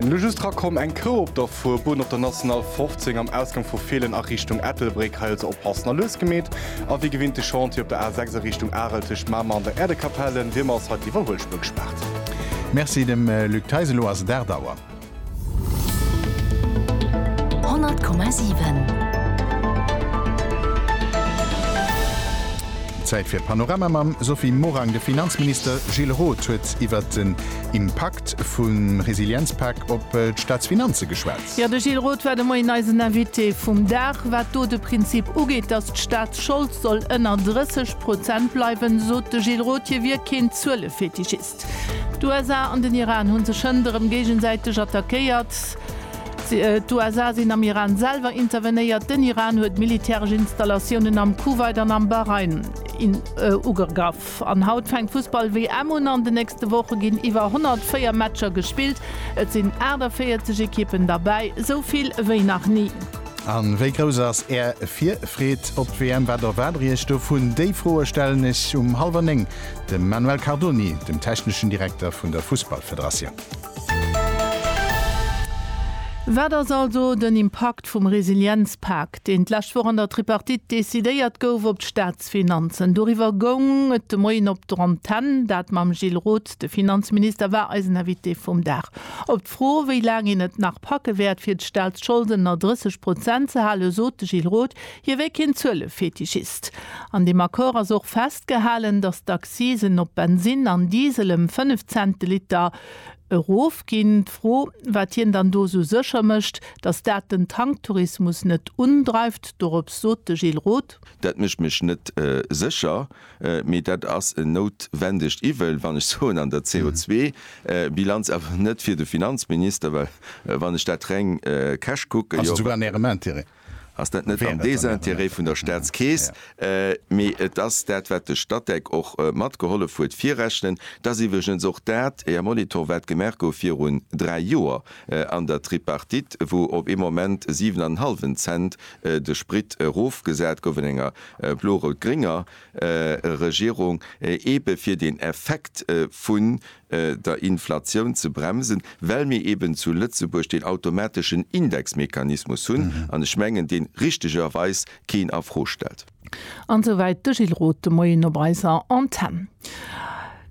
Elo just rakomm, eng Krou op der Fuerbunn op der National 15 am Ausgang vu Feelen a Richtung Ettelbréck. Hei also oppassen a lues gemeet. A wéi gewinnt de Chantier op der A 6 a Richtung Arel tëscht Mamer an der Äerdekapell. En Wiermer ass hei d'Iwwerhuelspuer gespaart. Merci dem Luc Theis. Elo ass et 8 Auer. 100,7. Zäit fir d'Panorama mam Sophie Morang. De Finanzminister Gilles Roth huet iwwert den. Impakt vum Resilienzpak op d'Staatsfinanze geschwat. Jo, de Gilles Roth war de Moien eisen Invité vum Dag. Wat do de Prinzip ugeet, datt d'Staatsschold soll ënner 30 Prozent bleiwen, sot de Gilles Roth, hie wier keen Zuelefetischist. D'USA an den Iran hu sech hënt erëm géigesäiteg attackéiert. D'USA sinn am Iran selwer intervenéiert. Den Iran huet militäresch Installatiounen am Kuwait an am Bahrain ugegraff. An haut fänkt d'Fussball-WM un. An de nächste Woche ginn iwwer 104 Matcher gespillt. Et sinn 48 Ekippen derbäi, esou vill wéi nach ni. A wéi grouss ass Är Virfreed op d'WM? Wat erwaart Der Iech dovun? Déi Froe stellen ech um hallwer néng dem Manuel Cardoni, dem techneschen Direkter vun der Fussballfederatioun. Wat ass also den Impakt vum Resilienzpak, deen d'lescht Woch an der Tripartite decidéiert gouf, op d'Stad? Staatsfinanzen. Doriwwer goung et de Moien op der Antenn. Dat mam Gilles Roth. De Finanzminister war eisen Invité vum Dag. Op d'Fro, wéi laang een et nach packe wäert, fir d'Staatsschold ënner 30 Prozent ze halen, sot de Gilles Roth, hie wär keen Zuelefetischist. An deem Accord ass och festgehalen, datt d'Accisen op Bensinn an Diesel ëm 5 Cent de Liter erofginn. D'Fro, wat hien dann do esou sécher mécht, datt dat den Tanktourismus net undreift, dorops sot de Gilles Roth. Dat mécht mech net sécher, mee dat ass en noutwendegt Iwwel, wann ech soen, an der CO2-Bilanz, awer net fir de Finanzminister, well wann ech dat reng cash kucken, jo, ass dat net am Désintérêt vun der Staatskeess, mee et ass dat, wat de Statec och matgehollef huet virrechnen. Et ass iwwregens och dat, Här Molitor, wat gemaach gouf virun dräi Joer an der Tripartite, wou op ee Moment siwen an en hallwen Cent de Sprit erofgesat gouf an enger blo-rout-grénger Regierung, eebe fir den Effekt vun der Inflatioun ze bremsen, well mir eeben zu Lëtzebuerg deen automateschen Indexmechanismus hunn, an ech mengen, dee richtegerweis keen a Fro stellt. An souwäit de Gilles Roth de Moien op eiser Antenn.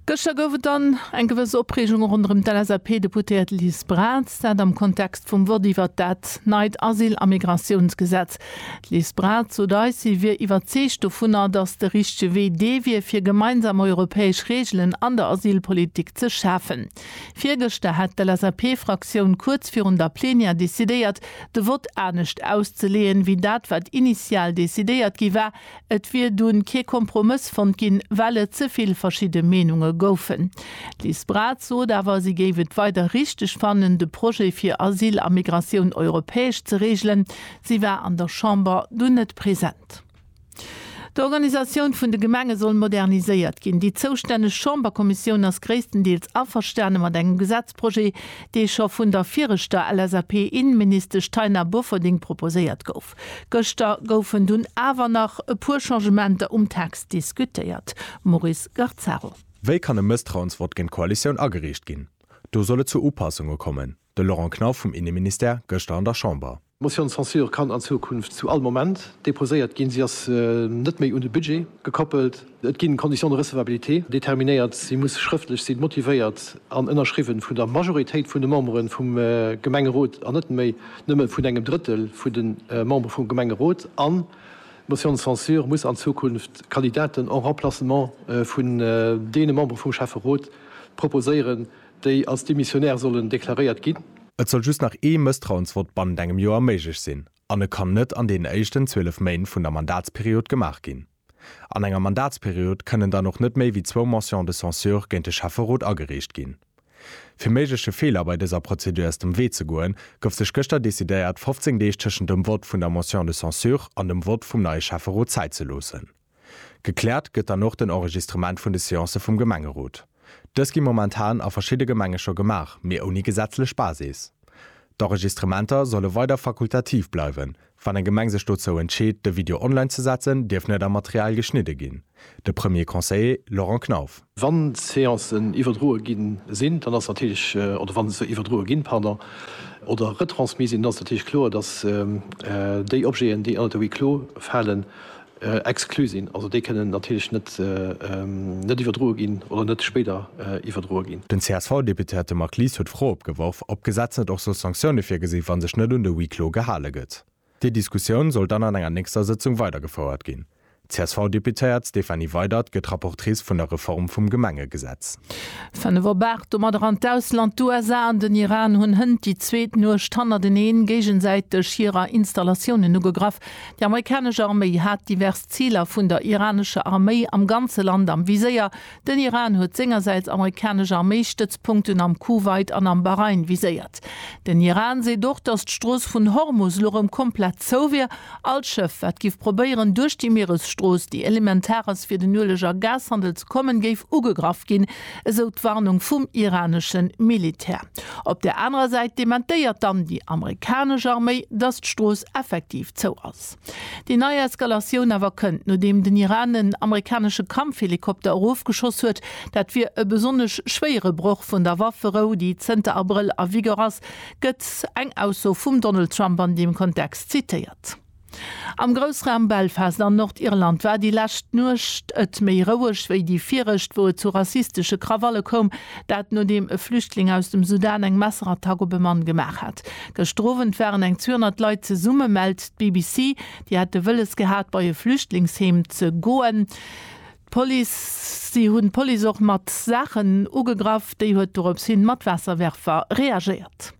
Gëschter gouf et dann eng gewëss Opreegung ronderëm d'LSAP-Deputéiert Liz Braz, dat am Kontext vum Vott iwwert dat neit Asyl a Migratiounsgesetz. D'Liz Braz sot eis, si wier iwwerzeegt dovunner, datt de richtege Wee dee wier, fir gemeinsam europäesch Reegelen an der Asylpolitik ze schafen. Virgëschter hat d'LSAP-Fraktioun kuerz virun der Plenière decidéiert, de Vott anescht auszeleeën, wéi dat wat initial decidéiert gi war. Et wier dunn kee Kompromëss fonnt ginn, well et ze vill verschidde Meenunge goufen. D'Liz Braz sot awer, si géif et weider richteg fannen, de Projet fir Asyl a Migratioun europäesch ze reegelen. Si war an der Chamber dunn net present. D'Organisatioun vun de Gemenge soll moderniséiert ginn. Déi zoustänneg Chamberkommissioun ass gréisstendeels averstane mat engem Gesetzprojet, dee scho vun der viregter LSAP-Innenministesch Taina Bofferding proposéiert gouf. Gëschter goufen dunn awer nach e puer Changementer um Text diskutéiert. Maurice Garzaro. Wéi kann e Mësstrauensvott géint d'Koalitioun agereecht ginn? Do soll et zu Upassunge kommen. De Laurent Knauf vum Inneministère gëschter an der Chamber. D'Motion de censure kann an Zukunft zu all Moment deposéiert ginn. Si ass net méi un de Budget gekoppelt. Et ginn Conditions de recevabilité determinéiert. Si muss schrëftlech sinn, motivéiert an ënnerschriwwen vun der Majoritéit vun de Memberen vum Gemengerot an net méi nëmme vun engem Drëttel vun de Membere vum Gemengerot. An d'Motion de censure muss an Zukunft Kandidaten en remplacement vun deene Membere vum Schäfferot proposéieren, déi als demissionär sollen deklaréiert ginn. Et soll just nach ee Mësstrauensvott bannent engem Joer méiglech sinn an e kann net an deenen éischten 12 Méint vun der Mandatsperiod gemaach ginn. An enger Mandatsperiod kënnen dann och net méi wéi zwou Motions de censure géint de Schäfferot agereecht ginn. Fir méigleche Feeler bei dëser Prozedur aus dem Wee ze goen, gouf sech gëschter decidéiert, 15 Deeg tëschent dem Vott vun der Motion de censure an dem Vott vum neie Schäfferot Zäit ze loossen. Gekläert gëtt dann och den Enregistrement vun de Seancë vum Gemengerot. Dës gi momentan a verschidde Gemenge scho gemaach, mee ouni gesetzlech Basis. D'Enregistrementer solle weider fakultativ bleiwen. Wann eng Gemeng sech dozou entscheet, de Video online ze setzen, dierf net am Material geschnidde ginn, de Premier Conseiller Laurent Knauf. Wann d'Seancen iwwerdroe gi sinn, dann ass natierlech, oder wann se iwwerdroe ginn, pardon, oder retransmis sinn, dann ass natierlech kloer, dass déi Objeten, déi ënnert de Huis clos falen, Exklu sinn. Also déi kënnen natierlech net net iwwerdroe ginn oder net spéider iwwerdroe ginn. Den CSV-Deputéierte Marc Lies huet d'Fro opgeworf, ob d'Gesetz net och soll Sanktioune virgesinn, wa sech net un de Huis clos gehale gëtt. Déi Diskussioun soll dann an enger nächster Sëtzung weidergefouert ginn. D'CSV-Deputéiert Stéphanie Weydert gëtt Rapportrice vun der Reform vum Gemengegesetz. 5 op 8 domadder an d'Ausland. D'USA an den Iran hunn hënt déi zweet Nuecht hannerteneen géigesäiteg hirer Installatiounen ugegraff. Déi amerikanesch Arméi hat divers Ziler vun der iranescher Arméi am ganze Land am Viséier. Den Iran huet sengersäits amerikanesch Arméistëtzpunkten am Kuwait an am Bahrain viséiert. Den Iran seet och, datt d'Strooss vun Hormus elo rëm komplett zou wier. All Schëff, wat giff probéieren, duerch déi Mieresstrooss, déi elementar ass fir den Ueleg a Gashandel ze kommen, géif ugegraff ginn. esou d'Warnung vum iranesche Militär. Op der anerer Säit dementéiert dann déi amerikanesch Arméi, datt d'Strooss effektiv zou ass. Déi nei Eskalatioun awer kënnt, nodeem den Iran en amerikanesche Kampfhelikopter erofgeschoss huet. Dat wier e besonnesch schwéiere Broch vun der Wafferou, déi zënter Abrëll a Vigueur ass, gëtt eng Ausso vum Donald Trump an deem Kontext zitéiert. Am Groussraum Belfast an Nordirland war déi lescht Nuecht et méi roueg wéi déi viregt, wou et zu rassistesche Krawalle koum. Dat nodeem e Flüchtling aus dem Sudan eng Messerattack op e Mann gemaach hat. Gëschter Owend waren eng 200 Leit zesumme, mellt d'BBC. Déi hätte wëlles gehat, bei e Flüchtlingsheem ze goen. Si hunn d'Police och mat Saachen ugegraff. Déi huet doropshin mat Waasserwerfer reagéiert.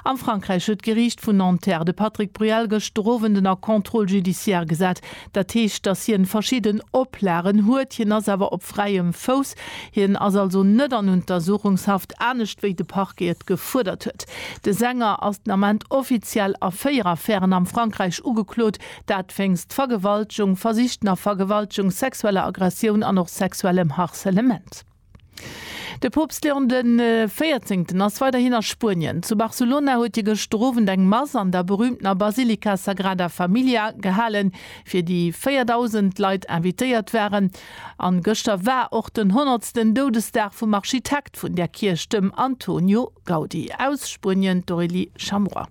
Am Frankräich huet d'Geriicht vun Nanterre de Patrick Bruel gëschter Owend en a contrôle judiciaire gesat. Dat heescht, datt hien verschidden Oplagen huet. Hien ass awer op fräiem Fouss. Hien ass also net an Untersuchungshaft, anescht wéi de Parquet et gefuerdert huet. De Sänger ass den Ament offiziell a véier Affären am Frankräich ugeklot, dat wéinst Vergewaltegung, versichten a Vergewaltegung, sexueller Aggressioun an och sexuellem Harcelement. De Poopst Leon de Véierzéngten ass weiderhin a Spuenien. Zu Barcelona huet hie gëschter Owend eng Mass an der berüümtener Basilika Sagrada Familia gehalen, fir déi 4.000 Leit invitéiert waren. A gëschter war och den honnertsten Doudesdag vum Architekt vun där Kierch, dem Antonio Gaudi. Aus Spuenien d'Aurélie Chamuat.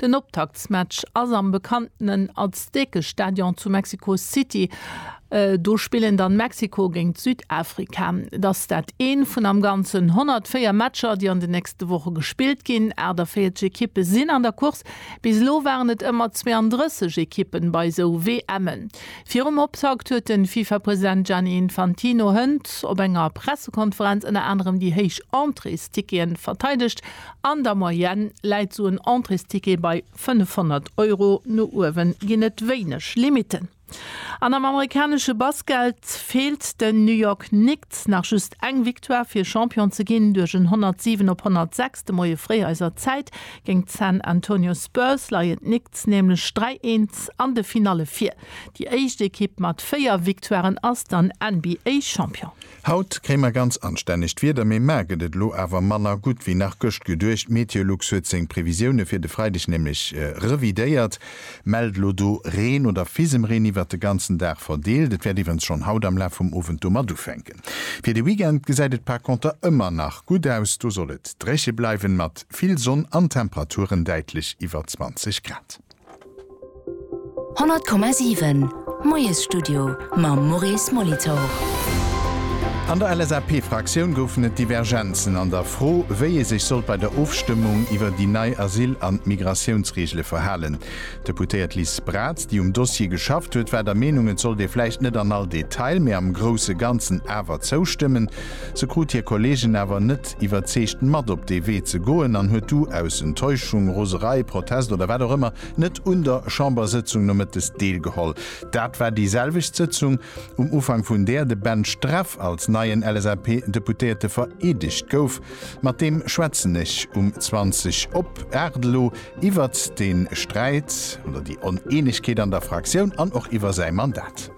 Den Optaktsmatch ass am bekannten Azteke Stadion zu Mexico City. Do spillen dann Mexiko géint Südafrika. Et ass dat een vun am ganzen 104 Matcher, déi an den nächste Woche gespillt ginn. 48 Ekippe sinn an der Course. Bis elo waren et ëmmer 32 Ekippen bei esou WMen. Virum Optakt huet den FIFA-President Gianni Infantino hënt op enger Pressekonferenz ënner anerem déi héich Entréesticketen verteidegt. An der Moyenne läit sou en Entréesticket bei 500 Euro, no uewen ginn et wéineg Limiten. An am amerikanesche Basket feelt den New York Knicks nach just eng Victoire fir Champion ze ginn. Duerch en 107 op 106 de Moie fréi eiser Zäit géint d'San Antonio Spurs leien d'Knicks nämlech 3, 1 an de Finalle vir. Déi éischt Ekipp mat 4 Victoiren ass dann NBA-Champion. Haut kréie mer ganz anstännegt Wieder, mee mar gëtt et elo awer manner gutt wéi nach gëscht geduecht. D'Meteolux huet seng Previsioune fir de Freideg nämlech revidéiert, mellt elo do Reen oder Fisemreen iwwert de ganzen Dag verdeelt. Et wäert iwwerens schonn haut am Laf vum Owend domat ufänken. Fir de Weekend gesäit et par konter ëmmer nach gutt aus, do soll et dréche bleiwen, mat vill Sonn an Temperaturen däitlech iwwer 20 Grad. 100,7 Moiesstudio mam Maurice Molitor. An der LSAP-Fraktioun goufen et Divergenzen an der Fro, wéi ee sech sollt bei der Ofstëmmung iwwer déi nei Asyl an Migratiounsreegele verhalen. D'Deputéiert Liz Braz, déi um Dossier geschafft huet, war der Meenung, et sollt ee vläicht net an all Detail, mee am grousse Ganzen awer zoustëmmen. Se krut hir Kolleegen awer net. Loscht, iwwerzeegt mat op dee Wee ze goen an huet du aus Enttäuschung, Roserei, Protest oder wat och ëmmer net un der Chambersëtzung nomëttes deelgeholl. Dat war déi selwecht Sëtzung, um Ufank vun där de Ben Streff als neien LSAP-Deputéierte vereedegt gouf. Mat deem schwätzen ech um 20 op 8 elo iwwert de Sträit oder déi Oneenegkeet an der Fraktioun an och iwwer säi Mandat.